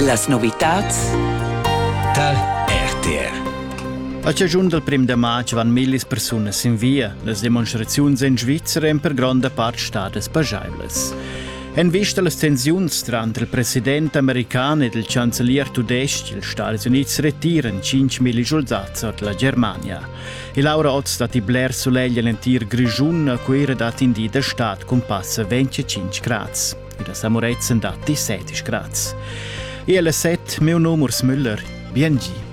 Las novitads tal RTR A chaschun dal prim da matg van millis persunas sin via. Las demonstraziuns en Svizzera èn per gronda part stadas pajaivlas. En vista a las tensiuns tranter il president american ed il chancelier tudestg, ils Stati Unids retiran 5.000 schuldats ord la Germania. E Laura Otz dat i bler sulegl en l'entir Grischun, a Cuira dat in di da stad cun passa 25 grads. ed a Samureizzen dat 17 grads. Iele set, meu nome Urs Müller, biengi.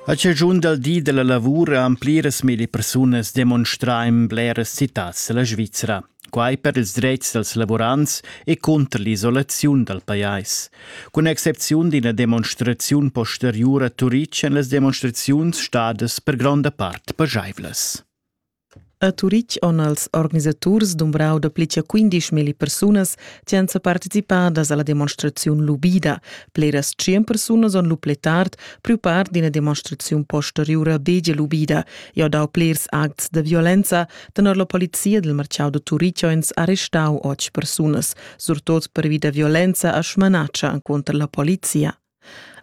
A cigiun dal di della lavura han pliras mille persunas demonstrà in bleras citats della Svizzera. Quai per ils dretgs dals lavurants e cunter l'isolaziun dal pajais. Cun excepziun d'ina demonstraziun posteriura Turic èn las demonstraziuns stadas per gronda part pajaivlas. A Turic han els organisaturs dumbrau dapli che 15.000 persunas che han participadas alla demonstraziun lubida. Pleras 100 persunas han lu pli tard priu part d'ina demonstraziun posteriura begie lubida e ha dau plers acts da violenza, Tenor la polizia del marciau da Turichoins ha restau otg persunas, surtot pervi da violenza a Schmanatscha contra la polizia.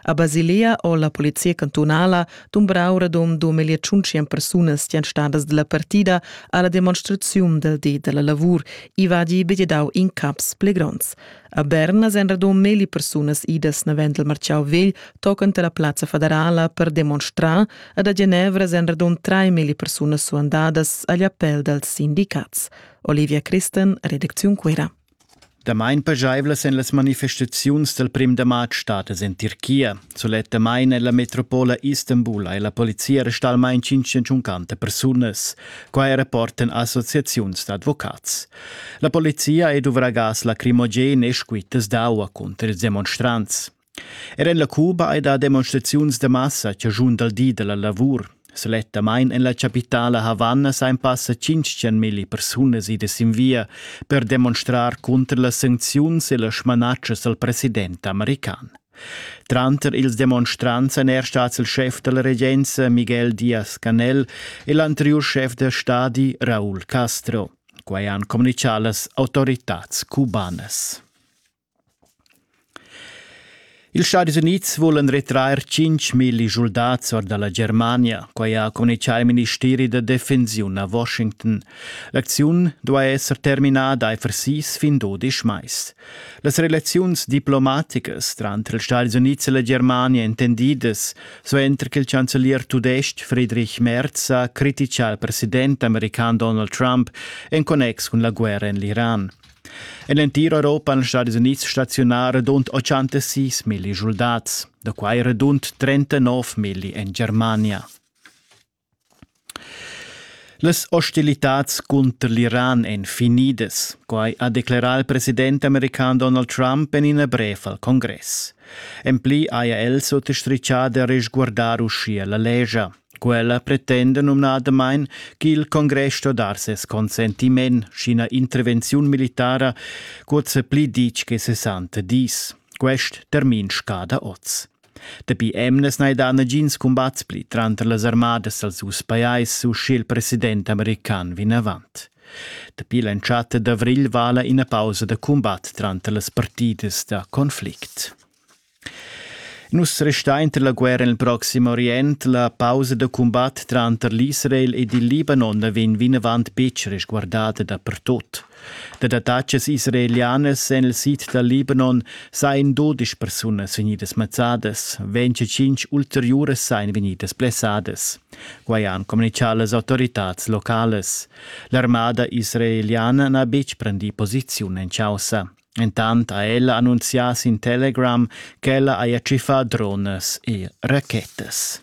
A Basilea o la polizia cantunala dumbrau radom 2500 persunas stan stadas della partida alla demonstraziun del di della lavur, i vadi begedau in caps pli gronds. A Berna èn radun melli persunas idas navend il marciau vegl tocant la plazza federala per demonstrar ed a Genevra èn radun trai melli persunas suandadas agl appell dals sindicats. Olivia Christen, redacziun Cuira. Damain pajaivlas èn las manifestaziuns dal prim da matg stadas en Tirchia. Sulettamain en la metropola Istanbul hai la polizia arrestà almain 150 persunas. Quai rapportan associaziuns d'advocats. La polizia è duvragas lacrimogen e squittas d'aua cunter ils demonstrants. Er en la Cuba hai dà demonstraziuns da massa che giun dal di da la lavur. Selettamain en la chapitala Havanna sain passa 500.000 persunas idas in via per demonstrar cunter las sancziuns e las smanatschas dal president american. Tranter ils demonstrants èn er stats il schef da la regenza Miguel Diaz-Canel e l'anteriur schef da stadi Raúl Castro. Quai han communitgà las autoritads cubanas. Ils Stadis Unids vulan retrair 5.000 schuldats or da la Germania. Quai ha communitgà il ministeri da defensiun a Washington. L'acziun duai esser terminada aifer sis fin dudisch mais. Las relaziuns diplomaticas tranter ils Stadis Unids e la Germania intendidas Suenter che il chancelier tudestg Friedrich Merz ha critica al president american Donald Trump en connex cun la guerra en l'Iran. En l'entir Europa han Stadis Unids staziunar rund 86 milli soldats, da quai rund 39 milli en Germania. Las ostilitads cunter l'Iran èn finidas, quai ha declerà il president american Donald Trump en ina brev al congress. En pli haja el suttostrichà da resguardar uschia la lescha. Quella pretenda numnadamain ch'il congress sto dar ses consentiment, sch'ina intervenziun militara cuzza pli ditg che 60 dis. Quest termin scada oz. Dapi emnas n'hai dà nagins cumbats pli tranter las armadas als dus pajais u sch'il president american vinavant. Dapi l'entschatta d'avrigl vala ina pausa da cumbat tranter las partidas da conflict. Nus restain tar la guerra nel Proxim Orient la pausa da cumbat tranter l'Israel ed il Libanon vegn vinavant betg resguardada dapertut. Dad attacas israelianas en il sid dal Libanon sajan dudesch persunas vegnidas mazzadas, 25 ulteriuras sajan vegnidas blessadas. Quai han communitgà las autoritads localas. L'armada israeliana n'ha betg prendì posiziun en chaussa. Intant ha ella annunzià sin Telegram ch'ella haja tschiffà dronas e rachettas.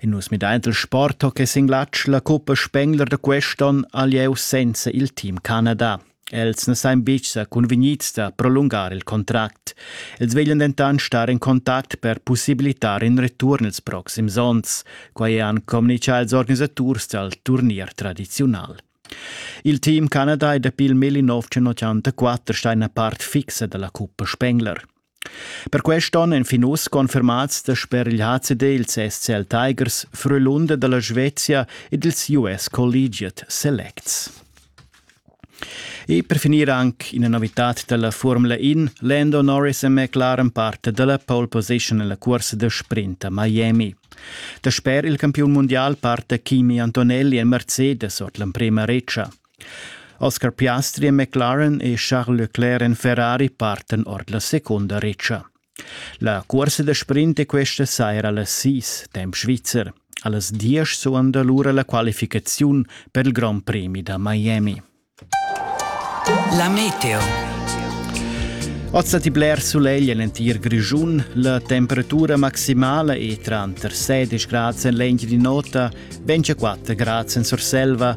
In nus midaint il sport ho que singlatsch la cuppa Spengler da quest'on a lieu senza il team Canada. Els na sain bicha cunvgnits da prolungar il contract. Els veglian dentan star in contact per pussibilitar in return ils proxims ons. Quai han communichà ils organisaturs dal turnier tradiziunal. Il team Canada è dapi il 1984 sta ina part fixa da la cuppa Spengler. Per quest onn èn fin uss confermads dasper il HCD ils SCL Tigers Frölunda da la Svezia ed ils US Collegiate Selects. E per finir anc ina novitad da la Formula In. Lando Norris è McLaren parte da la pole position en la cursa da sprint a Miami. Dasper il campiun mundial parte Kimi Antonelli en Mercedes ord l'emprima redscha. Oscar Piastri e McLaren e Charles Leclerc en Ferrari parten ord la secunda retscha. La cuorsa da sprint è questa saira allas sis, temp svizzer. Allas diesch suonda lura la qualificaziun per il Grand Prix da Miami. La meteo. Oz ti bler sulegl en entir Grischun, la temperatura maximala è tranter 16 gradi en legna di nota, 24 gradi en Surselva